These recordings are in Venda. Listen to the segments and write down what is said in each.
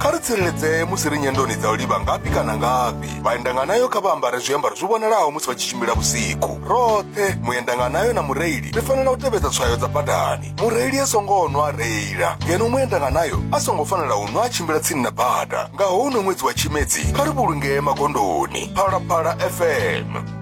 kha ri tsireledzee musi ri nyendoni dza u livha ngafhi kana ngafhi vhaendanganayo kha vha ambare zwiambaro zwi vhonalaho musi vha tshi tshimbila vhusiku roṱhe muendanganayo na mureili ri fanela u tevhedza tswayo dza badani mureili a songo nwa a reila ngeno muendanganayo a songo fanela u nwa a tshimbila tsini na bada nga houno ṅwedzi wa tshimedzi kha ri vhulungee magondoni phalaphala fm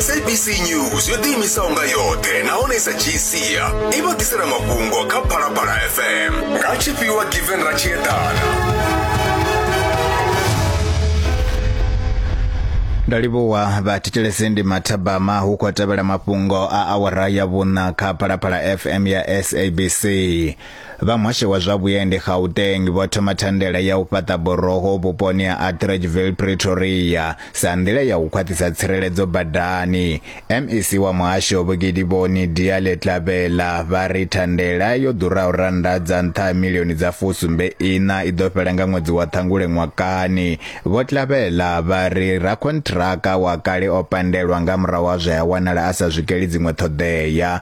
sabc news yo ḓiimisaho nga yoṱhe nahone i sa dzhii sia i vha ḓisela mafhungo kha phalaphala fm nga tshifhiwa given ra tshi eḓana nda livhuwa vhathetshelesi ndi mathabama hu khou tevhela mafhungo a awara ya vhuṋa kha phalaphala fm ya sabc Vha muhasho wa zwa vhuendi Gauteng vho thoma thandela ya u fhaṱa boroho vhuponi ha Atteridgeville Pretoria sa nḓila ya u khwaṱhisa tsireledzo badani. MEC wa muhasho Vho Gidiboni Diale-Tlabela vha ri thandela yo ḓuraho rannda dza nṱha ha milioni dza fusumbe iṋa i ḓo fhela nga ṅwedzi wa Ṱhangule ṅwakani. Vho Tlabela vha ri rakhonṱhiraka wa kale o pandelwa nga murahu ha zwe a wanala a sa swikeli dziṅwe ṱhoḓea.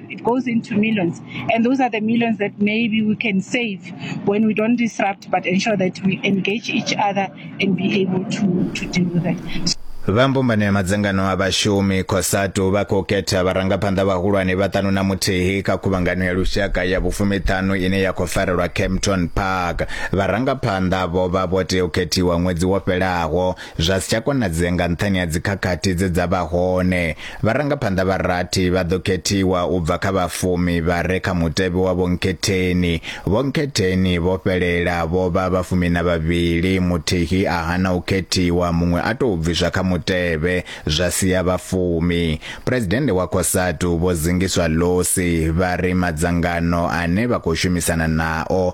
It goes into millions. And those are the millions that maybe we can save when we don't disrupt, but ensure that we engage each other and be able to, to deal with it. vha mbumbano ya madzangano a vhashumi cosatu vha khou khetha vharangaphanḓa vhahulwane vhaṱanu na muthihi kha khuvhangano ya lushaka ya vhufumiṱhanu ine ya khou farelwa campton park vharangaphanḓa vho vha vho tea u khethiwa ṅwedzi wo fhelaho zwa si tsha konadzea nga nṱhani ha dzikhakhathi dze dza vha hone. Vharangaphanḓa vha rathi vha ḓo khethiwa u bva kha vhafumi vha re kha mutevhe wa vhonkhetheni. Vhonkhetheni vho fhelela vho vha vhafumi na vhavhili, muthihi a hana u khethiwa, muṅwe a tou bviswa kha mutevhe, zwa sia vhafumi. Phresidennde wa Cosatu Vho Zingiswa Losi vha ri madzangano ane vha khou shumisana nao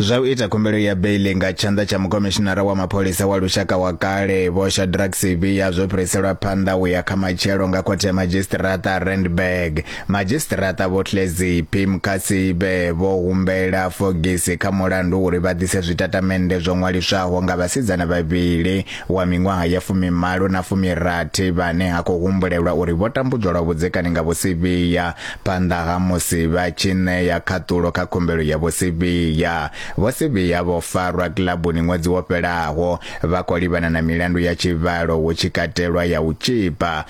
zwa u ita khumbelo ya beili nga tshanḓa tsha mukomishinara wa mapholisa wa lushaka wa kale vho shadrack sibiya zwo fhiriselwa phanḓa u ya kha matshelo nga khothe ya madzhisiṱiraṱa randburg madzhisiṱiraṱa vho tlezi pim kasibe vho humbela fogisi kha mulandu uri vha ḓise zwitatamennde zwo ṅwaliswaho nga vhasidzana vhavhili wa miṅwaha ya fumimalo na fumirathi vhane ha khou humbulelwa uri vho tambudzwa lwa vhudzekani nga vhusivhiya phanḓa ha musi vha tshi ṋea khaṱulo kha khumbelo ya vhusivhiya. Vho Sivhiya vho farwa kilabuni ṅwedzi wo fhelaho vha khou livhana na milandu ya tshivhalo hu tshi katelwa ya u tzhipa,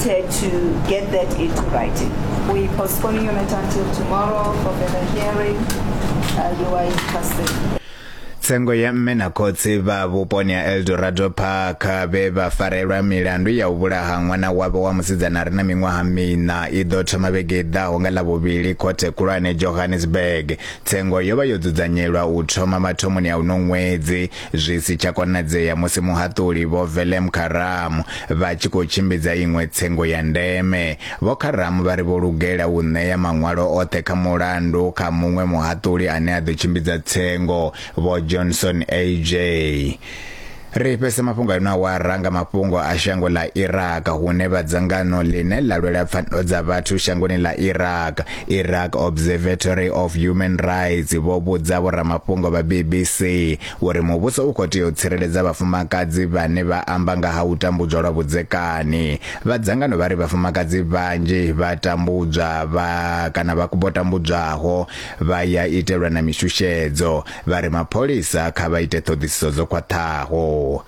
Ted to get that into writing. We're postponing your matter until tomorrow for further hearing. Uh, you are in custody. tsengo ya mme na khotsi vha vhuponi ha eldorado park vhe vha farelwa milandu ya u vhulaha ṅwana wavho wa musidzana re na miṅwaha miṋa i ḓo thoma vhege i ḓaho nga ḽavhuvhili khothe khulwane johannesburg tsengo yo vha yo dzudzanyelwa u thoma mathomoni a uno ṅwedzi zwi si tsha konadzea musi muhaṱuli vho Velem Karam vha tshi khou tshimbidza iṅwe tsengo ya ndeme. Vho Karam vha ri vho lugela u ṋea maṅwalo oṱhe kha mulandu kha muṅwe muhaṱuli ane a ḓo tshimbidza tsengo, Vho Johnson AJ. Ri fhese mafhungo a ino awara nga mafhungo a shango ḽa Iraq hune vha dzangano ḽine ḽa lwela pfanelo dza vhathu shangoni ḽa Iraq Iraq Observatory of Human Rights vho vhudza vhoramafhungo vha BBC uri muvhuso u khou tea u tsireledza vhafumakadzi vhane vha amba nga ha u tambudzwa lwa vhudzekani. Vha dzangano vha ri vhafumakadzi vhanzhi vha tambudzwa vha kana vha vho tambudzwaho vha ya itelwa na mishushedzo. Vha ri mapholisa kha vha ite ṱhoḓisiso dzo khwaṱhaho.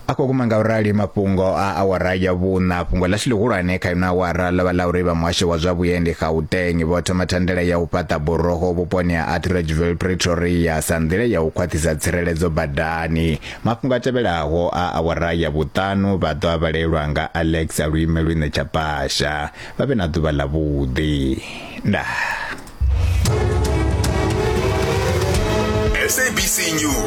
a khou guma nga u rali mafhungo a awara ya vhuṋa fhungo ḽashu ḽihulwane kha ino awara ḽo vha ḽa uri vha muhasho wa zwa vhuendi gauteng vho thoma thandela ya u fhaṱa buroho vhuponi ha atteridgeville pretoria sa nḓila ya u khwaṱhisa tsireledzo badani mafhungo a tevhelaho a awara ya vhuṱanu vha ḓo a vhalelwa nga alex a luime lwine tsha pasha vha vhe na ḓuvha ḽa vhuḓi ndaa